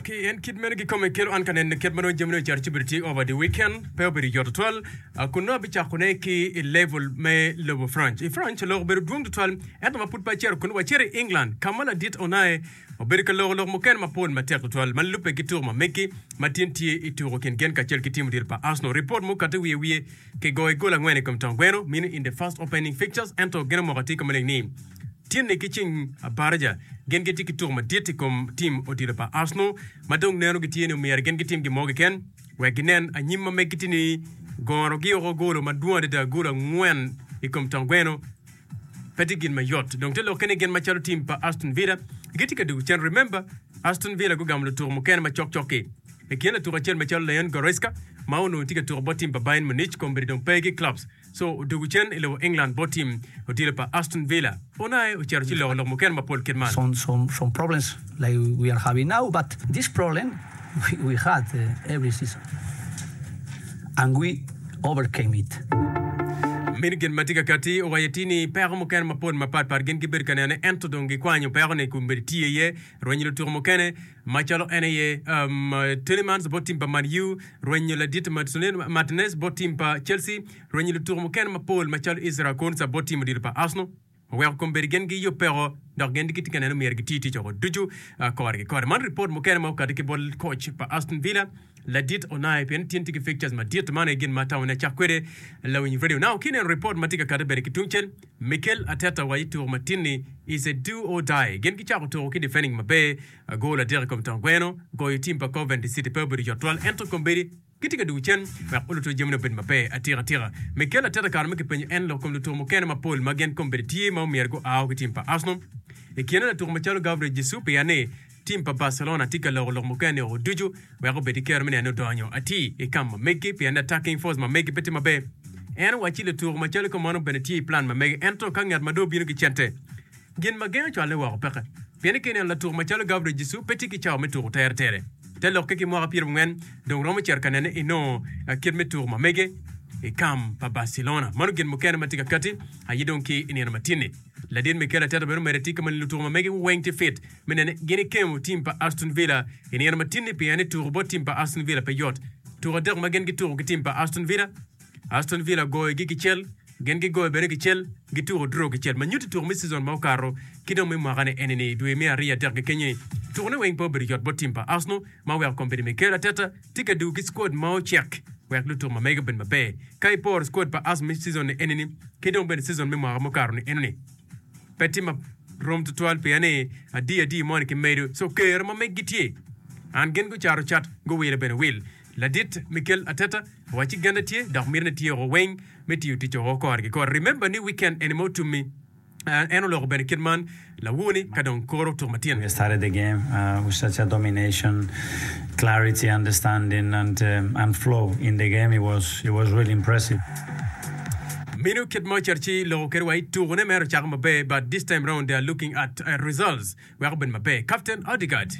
Ki en kit meno kikome kelo an ka nene kit ma dong jamine ocato ci bedo tye over the weekend pe obedo yot tutwal kun nongo abicako ne ki i level me lobo Franc. I Franc lok obedo dwong tutwal ento ma pud pe acito kun wacito i England ka ma ladit onaye obedo ka loko lok mukene mapol matek tutwal ma lubbe ki tuko ma megi ma tin tye i tuko kin gen kacel ki tim odilo pa Arsenal. Ripot mukati wiye wiye ki goyo gol angwen i kom tong gweno mino in the first opening fixtures ento geno moko atir ka maleng ni Tinni ki ceng abarija gin gitye ki tuk madit i kom tim odilo pa Arsenal ma dong neno gitye ni omyero gin gitim gin mo keken wek ginen anyim ma megi tye ni goro gi oko golo madwong adada golo angwen i kom tong gweno pe tye gin mayot dong te lokke ni gin macalo tim pa Aston Villa gitye ka dwogo cen remember Aston Villa gugamo lutuko mukene ma cok cok ki i kine latuko acel macalo Leon Goretzka ma onongo tye ka tuko bot tim pa Bayern Munich kombeddi dong pe ki clubs Shaw odwogo cen i lobo England bot tim odilo pa Aston Villa. Unai ocito ci loko lok mukene mapol kit man. Mini gin ma tye ka katti owaco ti ni peko mukene mapol mapat pat gin gibedo ka nenone ento dong gikwanyo peko-ni kun bedo tiye iye rwenyo lutuku mukene. Macalo en aye Tielemans bot tim pa Man U, rwenyo ladit Martinez bot tim pa Chelsea, rwenyo lutuku mukene mapol macalo Ezra Konsa bot tim odilo pa Arsenal, oweko kombeddi gen giyub peko dok gen gitye ka neno ni myero giti ticce woko ducu kore ki kore. Man ripot mukene ma okati ki bot koc pa Aston Villa. Ladit Onai pien tin tye ki fixtures madit man aye gin ma atamo ni acak kwede lawiny radio now ki neno report ma tye ka kati bene ki tungcel Mikel Arteta wa i tuko matin ni is a do or die gin gicako tuko ki defending maber goal adek i kom tong gweno goyo team pa Coventry City pe obedo yot twal ento kombeddi gitye ka dwogo cen wek oluto jamine obed maber atika tika Mikel Arteta kare mo kipenyo en lok kom lutuko mukene mapol ma gin kombeddi tye ma omyero gu ao ki team pa Arsenal i kine latuko macalo Gabriel Jesus pia ni Tim pa Barcelona tye ka loko lok mukene o ducu wek obed ki kero me neno donyo atir i kam ma megi pien attacking force ma megi pe tye maber. En owacci lutuku macalo ka mono bene tye i plan ma mege ento ka ngat ma dong bino ki cente gin ma geng cwalle woko peke pien ka ineno latuku macalo Gabriel Jesus pe tye ki cawa me tuku teretere. Te lokke ki mwaka pyerabongwen dong romo cito ka nene inongo kit me tuku ma mege i kam pa Barcelona. Mano gin mukene ma tye ka kati aye dong ki i nino matinni. Ladit Mikel Arteta bene omedde tika moni lutuku ma mege weng tye fit. me nene gin ikemo tim pa Aston Villa i nino matinni pien ni tuko bot tim pa Aston Villa pe yot. Tuko adek ma gin gituko ki tim pa Aston Villa, Aston Villa goyogi kicel, gin gigoyo bene kicel, gituko draw kicel. Ma nyutti tuko me season ma okato ki dong me mwakane enini i dwe me ariyo adek kekenyini, tukone weng pe obedo yot bot tim pa Arsenal ma oweko kombeddi Mikel Arteta tye ka dugo ki squad ma ocek wek lutuko ma mege obed maber. Ka iporo squad pa Arsenal me season-ni enini ki dong bene season me mwaka mukato-ni enoni, pe tye ma rom twatwal pien ni adi adi moni ki medo so kero ma meggi tye and gin gucato cat guwile bene wil. Ladit Mikel Arteta owacci genne tye dok miti ne tyeko weng me tiyo tic o kore ki kore. Remember ni weekend eni ma otummi and en oloko bene kit man lawu ni ka dong koro tuk ma tyen. We started the game uh with such a domination, clarity, understanding and uh and flow in the game it was it was really impressive. Minu kit ma oceto ci loko kede wa ituku ne mere ocako maber but this time round they are looking at results weko bed maber captain Odegaard.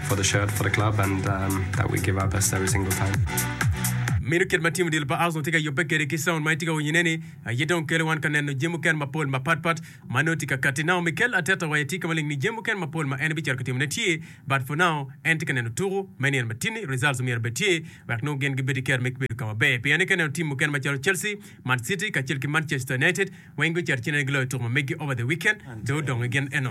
for the shirt for the club and um, that we give our best every single time. Minu kit ma tim odilo pa Arsenal tye ka yubbe kede ki sound ma itye ka winyo-ne ni, aye dong kelo wan ka neno jami mukene mapol mapat pat ma nongo tye ka katti. Now Mikel Arteta wa aye tye ka maleng ni jami mukene mapol ma en bicito ka timone tye but for now en tye ka neno tuku me nino matini results myero bed tye wek nongo gin gibed ki kero me kibedo ka maber. Pien ni ka ineno tim mukene macalo Chelsea, Man City kacel ki Manchester United weng gucito cinane giloyo tuko ma meggi over the weekend, pe odong i gin eno.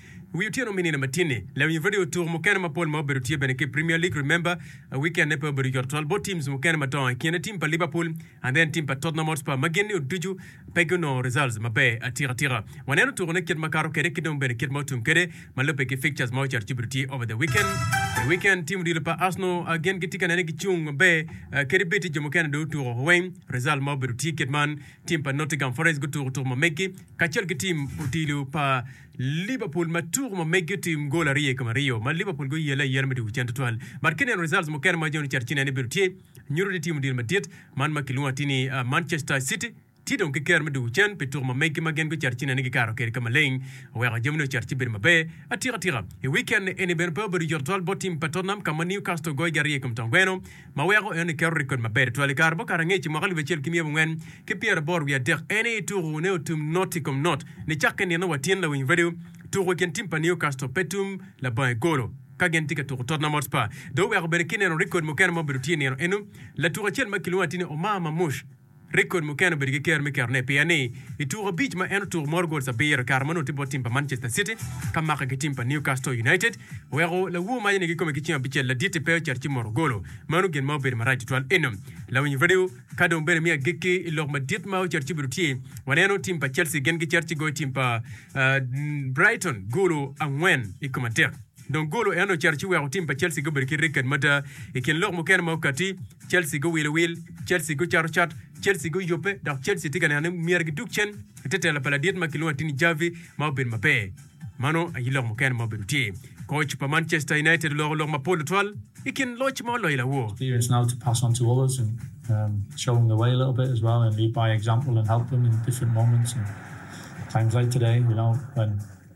Wi otyeno me nino matin-ni, lawiny radio tuku mukene mapol ma obedo tye bene ki i Premier League remember wikenne pe obedo yot tutwal bot teams mukene madongo i kine tim pa Liverpool and then tim pa Tottenham Hotspur ma gin ni oducu pe gunongo results maber atika tika. Waneno tukune kit ma kato kwede ki dong bene kit ma otum kwede ma lubbe ki fixtures ma ocito ci obedo tye over the weekend. I weekend tim odilo pa Arsenal gin gitye ka nene gicung maber kadi bed tye jo mukene dong otuko woko weng result ma obedo tye kit man tim pa Nottingham Forest gutuko tuku ma meggi kacel ki tim odilo pa Liverpool ma tuku ma megi otim gol aryo i kom aryo ma Liverpool guyelle ayela me tuku cen tutwal. But kine neno results mukene ma John Chat ci neno ni bedo tye nyuto ni team odiro madit man ma kilwongo atir ni Manchester City tye dong ki kero me tuku cen pi tuku ma megi ma gin gucito ci neno ni gikato kede ka maleng oweko jami ne ocito ci bedo maber atika tika. I weekend eni bene pe obedo yot tutwal bot team pa Tottenham ka ma Newcastle ogoyogi aryo i kom tongweno ma weko en ni keto rikod maber tutwal i kare mukato angec i mwaka alip acel ki myero abongwen ki pyera aboro wiye adek en aye ituku ne otum not i kom not ni cakke i nino wa tin lawiny radio tuku i kin tim pa new castle pe tum labongo i golo ka gin tye ka tuku tottenham hotspur dong oweko bene ki neno rikod mukene ma obedo tye i nino eno latuk acel ma kilwongo atini omar mamush Rekod mukene obedo ki ker me ketone pien ni i tuku abic ma en otuku mot gol abiro i kare ma onongo tye bot tim pa Manchester City ka make ki tim pa Newcastle United oweko lawo ma yene gikome ki cing abicel laditi pe ocito ci mot ogolo. Meno gin ma obedo marac tutwal eno lawiny radio ka dong bene me agikki i lok madit ma ocito ci obedo tye waneno tim pa Chelsea gin gicito ci goyo tim pa Brighton golo angwen i kom adek. Dong golo en ocito ci weko tim pa Chelsea gubedo ki ricket mada. I kin lok mukene ma okatti, Chelsea guwilo wil, Chelsea gucato cat, Chelsea guyubbe, dok Chelsea tye ka neno ni myero gidug cen i te tela pa ladit ma kilwongo atini Xavi ma obedo maber. Mano aye lok mukene ma obedo tye. Koc pa Manchester United oloko lok mapol tutwal i kin loc ma oloyo lawo. Here is now to pass on to others and show them the way a little bit as well and lead by example and help them in different moments and times like today you know when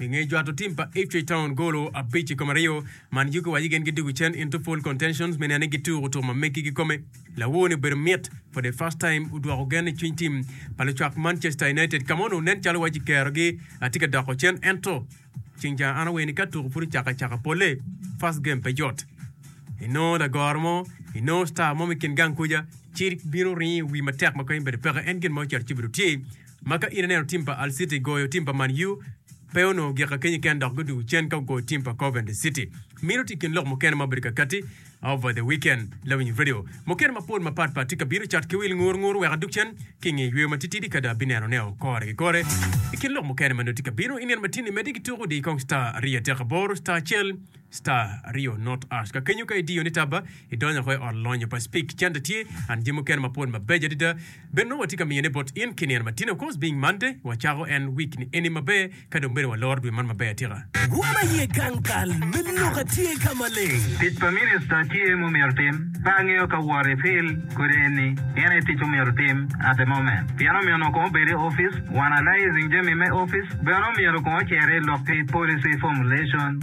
I nge jwato tim pa Ipswich Town golo abic i kom aryo, man yugi wa yigen gidwogo cen into pole contentions me neno ni gituko tuko ma meggi gikome. Lawor ni obedo mit for the first time odwoko gen i cwiny tim pa lucwak Manchester United ka ma onongo nen calo waci kerogi tye ka doko cen ento ceng ca an awer ni ka tuko pud ocako acaka pole first game pe yot inongo lagoro mo inongo star mo me kin gang kuca ci bino ringo i wi matek ma kany obedo peke en gin ma ocito ci obedo tye ma ka in ineno tim pa Hull City goyo tim pa Man U, pe onongo gik akenyi ken dok gudugo cen ka gugoyo tim pa Coventry City. Mino tye kin lok mukene ma obedo kakati over the weekend. Lawiny radio mukene mapol mapat pat tye ka bino cat ki wil ngur ngur wek adug cen ki i nge yweyo matitidi kadi abineno neo kore ki kore. I kin lok mukene ma nongo tye ka bino, i nino matini medde gituko di kong star aryo atek aboro, star acel, Star aryo not ash ka kenyo ka idiyo ni taba idonyo ko i ot lonyo pa speak cente tye and jami mukene mapol mabeco adada bene nongo watye ka miyone bot in ki nino matino cause being Monday wacako en week ni eni maber ka dong bene waloro dwe man maber atika. Rwom aye gang kal me lok atye ka maleng. Tic pa minista tye mumyero tim. Pe angeyo ka wot i fil kodi eni en aye tic omyero tim at the moment pien omyeno kong obed i office one alysing jami me office bene omyero kong ocer i lok ki policy formulation.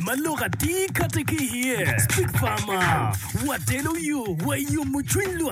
ma lok atir kati ki iye. Stick Farmer, wateno yo, wayumo cwiny lwak.